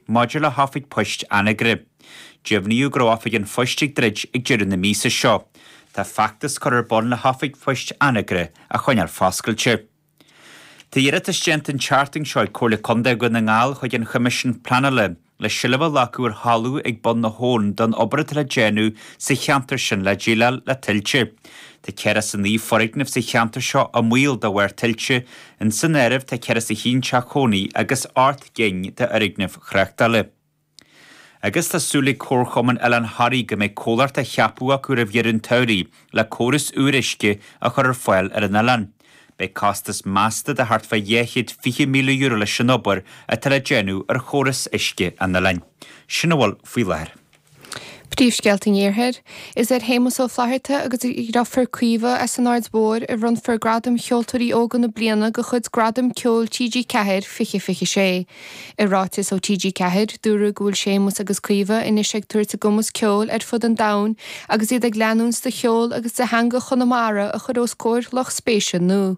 Maidir le hOifig Poist Anagaire, deimhníodh go raibh oifig an phoist ag druid ag deireadh na míosa seo. Tá feachtas curtha ar bun le hOifig Poist Anagaire a choinneáil foscailte. Tá iarratas déanta an tseachtain seo ag Comhairle Contae Dhún na nGall chuig an Choimisiún Pleanála le seilbh a ghlacadh ar thalamh ag Bun na hAbhann don obair atá le déanamh sa cheantar sin le déileáil le tuilte. Tá ceathracha a naoi foirgneamh sa cheantar seo i mbaol de bharr tuilte, insan áireamh tá ceathracha a haon teach chónaí agus. gcinn de fhoirgnimh thráchtála. Agus tá súil ag Comharchumann Oileán Thoraí go mbeidh comhlacht ceaptha acu roimh dheireadh an tsamhraidh le córas úr uisce a chur ar fáil ar an oileán. Beidh costas measta de thart fá dhá chéad fiche míle euro leis an obair atá le déanamh ar chóras uisce an oileáin. Sin a bhfuil faoi láthair. Príomhscéalta an Iarthair, Is ar Shéamus Ó Flatharta agus a dhriofúr Caoimhe as an Aird Mhóir a bhronnfar Gradam Cheoltóirí Óga na Bliana de chuid Gradaim Ceoil TG4 2026. I ráiteas ó TG4, dúradh go bhfuil Séamus agus Caoimhe anois ag tabhairt a gcumas ceoil ar fud an domhain agus iad ag leanúint de cheol agus de theanga Chonamara a chur os comhair lucht spéise nua.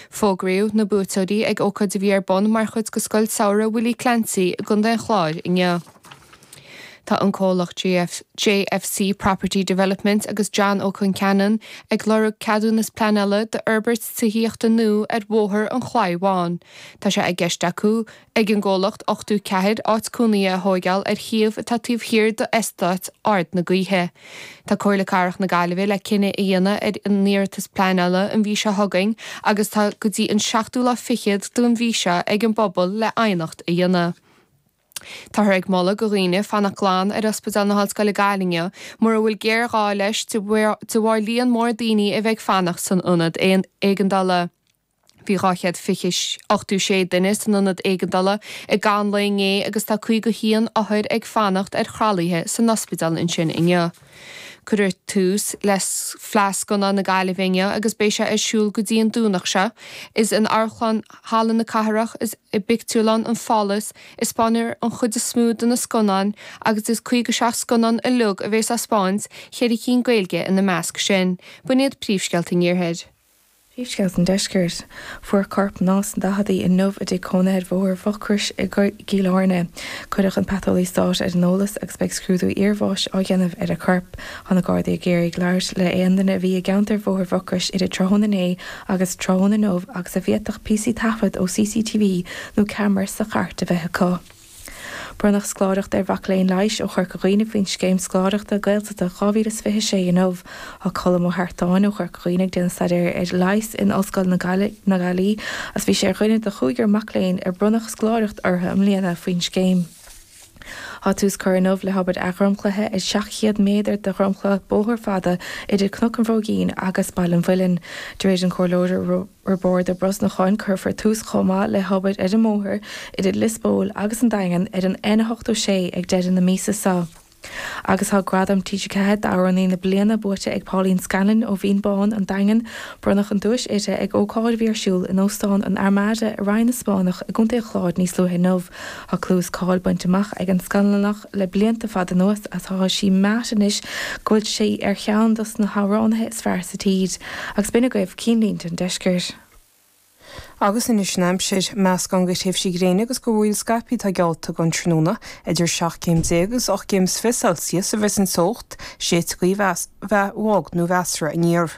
Fógraíodh na buaiteoirí ag ócáid a bhí ar bun mar chuid de Scoil Samhraidh Willie Clancy i gContae an Chláir inniu. Tá an comhlacht JFC Property Development agus John Ó Conceanainn ag lorg ceadúnas pleanála d'fhorbairt tithíochta nua ar Bhóthar an Chlaí Bháin. Tá sé i gceist acu, ag an gcomhlacht 84 áit cónaithe a thóigeáil ar shuíomh atá taobh thiar d'Eastáit Ard na Gaoithe. Tá Comhairle Cathrach na Gaillimhe le cinneadh a dhéanamh ar an iarratas pleanála an mhí seo chugainn agus tá go dtí an 7ú lá fichead den mhí seo ag an bpobal le aighneacht a dhéanamh. Táthar ag moladh go dhaoine fanacht glan ar Ospidéal na hOllscoile Gaillimh inniu mura bhfuil géarghá leis de bharr líon mór daoine a bheith ag fanacht san ionad éigeandála. Bhí dhá chéad ochtó sé duine san ionad éigeandála i gcaitheamh an lae inné agus tá caoga haon othar ag fanacht ar thralaithe san ospidéal ansin inniu. Cuireadh tús le Fleadh Scannán na Gaillimhe inniu agus beidh sé ar siúl go dtí an Domhnach seo. Is in Amharclann Halla na Cathrach is i bpictiúrlann an Phálás a spáinfear an chuid is mó de na scannáin agus as 57 scannán uilig a bhéas á spáint, ceithre cinn Gaeilge ina measc sin. B'in iad príomhscéalta an Iarthair. Príomhscéalta an Deiscirt. Fuarthas corp mná sna daichidí inniu i dtigh cónaithe ar Bhóthar Mhucrois i gCill Áirne. Cuireadh an Paiteolaí Stáit ar an eolas agus beidh scrúdú iarbháis á dhéanamh ar a corp. Tá na Gardaí ag iarraidh labhairt le aon duine a bhí i gceantar Bhóthar Mhucrois idir tráthnóna inné agus tráthnóna inniu agus a bhféadfadh píosaí taifead ó CCTV nó ceamara sa chairt a bheith acu. Bronnadh scoláireacht ar mhac léinn leighis ó Chorca Dhuibhne faoin Scéim Scoláireachta Gaeltachta 2026 inniu. Tá Colm Ó hArtáin ó Chorca Dhuibhne ag déanamh staidéar ar leigheas in Ollscoil na Gaillí agus bhí sé ar dhuine de chúigear mac léinn ar bronnadh scoláireacht orthu i mbliana faoin scéim. Tá tús curtha inniu le hobair athdhromchlaithe ar 700 méadar de dhromchla bóthair fhada idir Cnoc an Bhróigín agus Baile an Mhuilinn. Dúirt an Comhairleoir Roibeárd Ó Brosnacháin go gcuirfear tús chomh maith le hobair ar an mbóthar idir Lios Póil agus an Daingean ar an N86 ag deireadh na míosa so. Agus tá Gradam TG4 d'Amhránaí na Bliana buaite ag Pauline Scanlon ó Bhinn Bhán, An Daingean, bronnadh an duais uirthi ag ócáid a bhí ar siúl in Óstán an Armada i Rinn na Spáinneach i gContae an Chláir níos luaithe inniu. Tá clú is cáil bainte amach ag an Scanlonach, le blianta fada anuas tá sí meáite anois go bhfuil sí ar cheann dos na hamhránaithe is fearr sa tír, agus b'in agaibh cinnlínte an Deiscirt. Agus anois an aimsir meascán de thréimhsí gréine agus de mhúraíl scaipthe atá geallta don tráthnóna idir seacht gcéim déag agus ocht gcéim is fiche Celsius a bheas an teocht, séidfidh gaoth a bheas bog nó measartha aniar.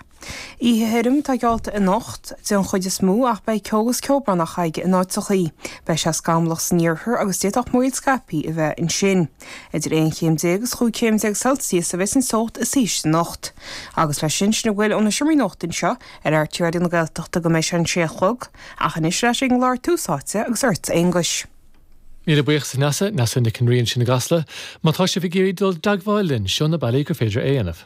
Oíche thirim atá geallta anocht, den chuid is mó, ach beidh ceo agus ceobhrán farraige in áiteachaí. Beidh sé scamallach san iarthar agus d'fhéadfadh múraíl scaipthe a bheith ansin. Idir aon chéim déag agus chúig chéim déag Celsius a bheas an teocht is ísle anocht. Agus leis sin, sin a bhfuil ón seomra nuachta anseo ar RTÉ Raidió na Gaeltachta go mbeidh sé a sé a chlog. Ach anois ar ais ag an gclár Tús Áite agus ortsa, a Aonghuis. Míle buíochas a Neasa, Neasa Nic an Rí ansin i gCasla. Má tá sibh ag iarraidh dul i dteagmháil linn, seo na bealaí gur féidir é a dhéanamh.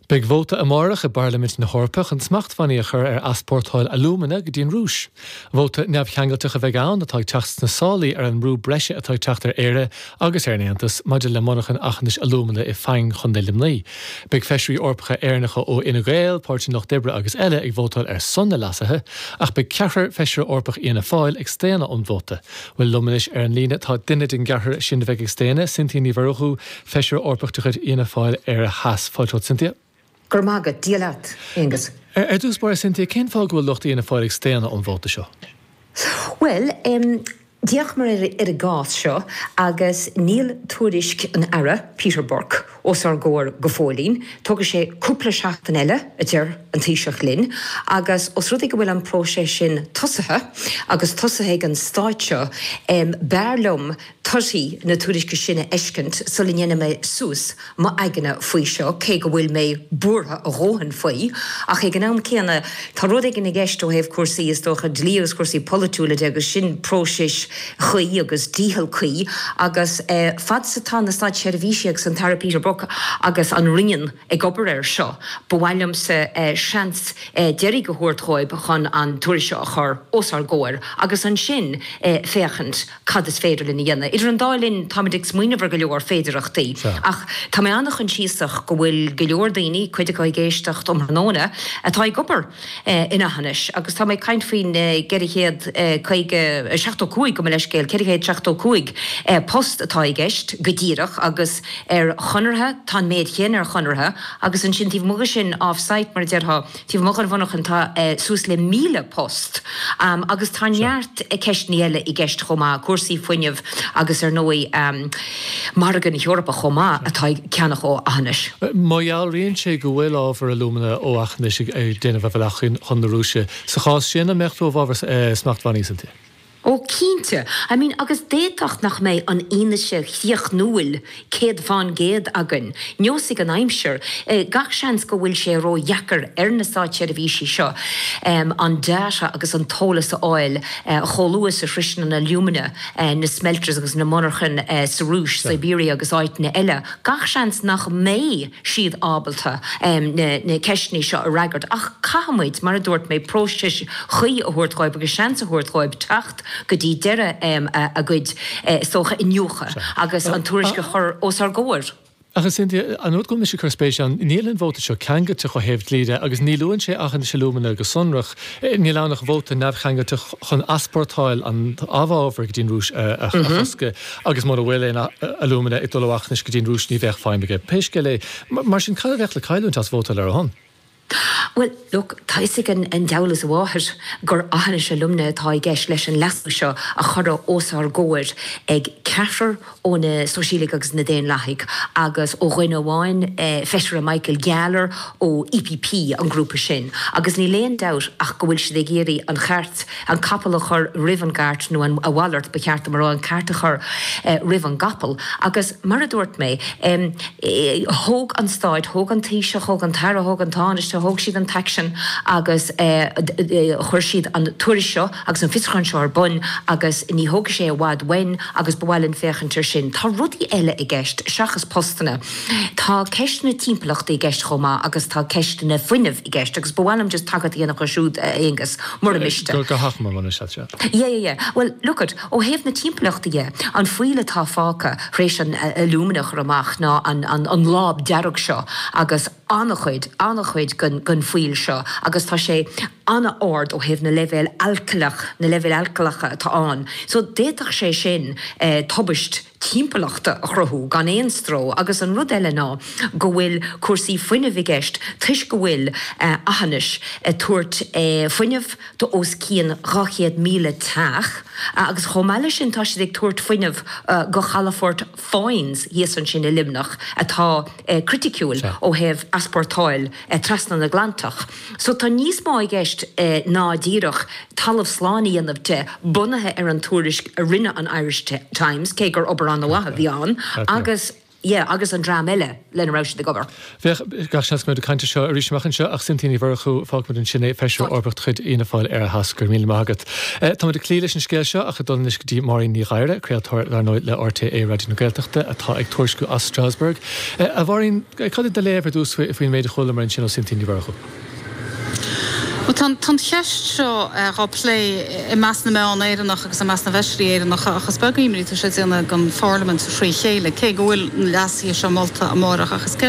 Beidh vóta amárach i bPairlimint na hEorpa chun smachtbhannaí a chur ar easpórtáil alúmana go dtí an Rúis. Vóta neamhcheangailteach a bheidh ann atá ag teacht sna sálaí ar an mbrú breise atá ag teacht ar Éire agus ar an Aontas maidir le monarcha Aughinish alúmana i bhFaing, Contae Luimnigh. Beidh feisirí Eorpacha Éireannacha ó Fhine Gael, Páirtí an Lucht Oibre agus eile ag vótáil ar son na leasuithe ach beidh ceathrar Feisire Eorpach Fhianna Fáil ag staonadh ón vóta. Bhuel, liom anois ar an líne tá duine den gceathrar sin a bheidh ag staonadh, Cynthia Ní Mhurchú, Feisire Eorpach de chuid Fhianna Fáil, Éire Theas, fáilte romhat Cynthia. Go raibh maith agat. Dia leat, Aengus. Ar dtús báire, Cynthia, cén fáth go bhfuil lucht Fhianna Fáil ag staonadh ón vóta seo? Bhuel, d'fhéachamar ar an gcás seo agus níl tuairisc an Aire, Peter Burke, os ár gcomhair go fóillín. Tógfaidh sé cúpla seachtain eile, a deir an Taoiseach linn, agus os rud é go bhfuil an próiseas sin tosaithe, agus tosaithe ag an Stát seo, b'fhearr liom torthaí na tuairisce sin a fheiscint sula ndéanfaidh mé suas m'aigne faoi seo, cé go bhfuil mé buartha a dhóthain faoi. Ach ag an am céanna, tá rud éigin i gceist ó thaobh cúrsaí, is dócha, dlí agus cúrsaí polaitiúla de, agus sin próiseas cuí agus dícheall cuí. Agus fad 's atá na Státseirbhísigh agus an tAire Peter Burke agus an Roinn ag obair air seo, ba mhaith liomsa seans deiridh a thabhairt dhóibh chun an tuairisc seo a chur os ár gcomhair, agus ansin féachaint. cad is féidir linn a dhéanamh. Idir an dá linn táimid ag smaoineamh ar go leor féidearthachtaí. Ach tá mé an-choinsiasach go bhfuil go leor daoine, cuid acu ag éisteacht um thráthnóna, atá ag obair in Eachinis agus tá mé ag caint faoin gceithre chéad caoga, seachtó cúig, gabh mo leithscéal, ceithre chéad seachtó cúig post atá i gceist go díreach agus ar chonartha, tá an méid chéanna ar chonartha agus ansin taobh amuigh de sin off-site mar a déarfá, Taobh amuigh den mhonarchain tá suas le míle post agus tá neart ceisteanna eile i gceist chomh maith, cúrsaí fuinnimh agus ar ndóigh margadh na hEorpa chomh maith atá ag ceannach ó Eachinis. Má dhealraíonn sé go bhfuil ábhar alúmana ó Eachinis ag déanamh a bhealach chun na Rúise, sa chás sin an mbeadh tú i bhfabhar smachtbhannaí ansin? Ó, cinnte. I mean, agus d'fhéadfadh nach mbeidh an fhianaise chríochnúil céad fán gcéad againn. Neosfaidh an aimsir. Gach seans go bhfuil sé ró-dheacair ar na státseirbhísigh seo an data agus an t-eolas a fháil chomh luath is a shroiseann an alúmana na smelters agus na monarchain sa Rúis, Siberia agus áiteanna eile. Gach seans nach mbeidh. siad ábalta na ceisteanna seo a fhreagairt. Ach caithfimid, mar a dúirt mé, próiseas cuí a thabhairt dhóibh agus seans a thabhairt dhóibh teacht go dtí deireadh a gcuid, is dócha, iniúchadh agus an tuairisc a chur os ár gcomhair. Ach is cinnte, an rud go bhfuil mise ag cur spéis ann, níl an vóta seo ceangailteach ó thaobh dlí de agus ní luann sé Eachinis Alumina go sonrach. Níl ann ach vóta neamhcheangailteach chun easpórtáil an amhábhair go dtí an Rúis a chosc. Agus mura bhfuil aon alúmana ag dul ó Eachinis go dtí an Rúis ní bheadh feidhm aige pé scéal é. Mar sin cad a bheadh le cailliúint as vótáil ar a shon? Bhuel, look, tá a fhios ag an diabhal is a mháthair gur Eachinis Alumina atá i gceist leis an leasú seo a cuireadh os ár gcomhair ag ceathrar ó na Sóisialaigh agus na Daonlathaigh agus ó dhuine amháin, Feisire Michael Gahler ó EPP, an grúpa sin. Agus níl aon dabht ach go bhfuil siad ag iarraidh an chairt an capall a chur roimh an gcairt nó a mhalairt, ba cheart dom a rá, an cairt a chur roimh an gcapall agus mar a dúirt mé, thóg an Stát, thóg an Taoiseach, thóg an tAire, thóg an Tánaiste, thóg siad an t-aicsean agus chuir siad an tuairisc seo agus an fiosrúchán seo ar bun agus ní thógfaidh sé i bhfad uainn agus ba mhaith linn féachaint ar sin. Tá rudaí eile i gceist seachas postanna. Tá ceist na timpeallachta i gceist chomh maith agus tá ceist an fhuinnimh. i gceist. Agus ba mhaith liom just tagairt a dhéanamh dho siúd, a Aonghus, mura miste. Go hachomair, mura miste leat. Yeah, yeah, yeah. Bhuel, look it, ó thaobh na timpeallachta dhe, an fuíoll atá fágtha tar éis an alúmana a chur amach ná an láib dhearg seo agus an-chuid, an-chuid den fuíoll seo agus tá sé an-ard ó thaobh na leibhéal alcaileach, na leibhéil alcaileacha atá ann. So, d'fhéadfadh sé sin tubaist. timpeallachta a chruthú gan aon stró agus an rud eile ná go bhfuil cúrsaí fuinnimh i gceist toisc go bhfuil Aughinish ag tabhairt fuinneamh do os cionn 200,000 teach agus chomh maith le sin tá siad ag tabhairt fuinneamh do Chalafort Foynes thíos ansin i Luimneach atá criticiúil ó thaobh easpórtáil trasna an Atlantaigh. So tá níos mó i gceist ná díreach talamh slán a dhéanamh de, bunaithe ar an tuairisc a rinne an Irish Times, cé gur obair ana mhaith a bhí ann, agus yeah agus an dream eile lena raibh siad ag obair. Yeah, gach seans go mbeimid ag caint air seo arís amach anseo ach Cynthia Ní Mhurchú, fágfaimid ansin é, Feisire Eorpach de chuid Fhianna Fáil ar ndóigh. Go raibh míle maith agat. Táimid ag cloí leis an scéal seo ach ag dul anois go dtí Máirín Ní Ghadhra, craoltóir, dar ndóigh, le RTÉ Raidió na Gaeltachta atá ag tuairisciú as Strasbourg. A Mháirín, cad é do léamh ar dtús faoin méid a chualamar ansin ó Cynthia Ní Mhurchú? Bhuel, tá an cheist seo dhá plé i measc na meán Éireannach agus i measc na bhfeisirí Éireannacha ach is beag imní atá sé a dhéanamh don pharlaimint fré chéile, cé go bhfuil na leasuithe seo molta amárach. Ach is.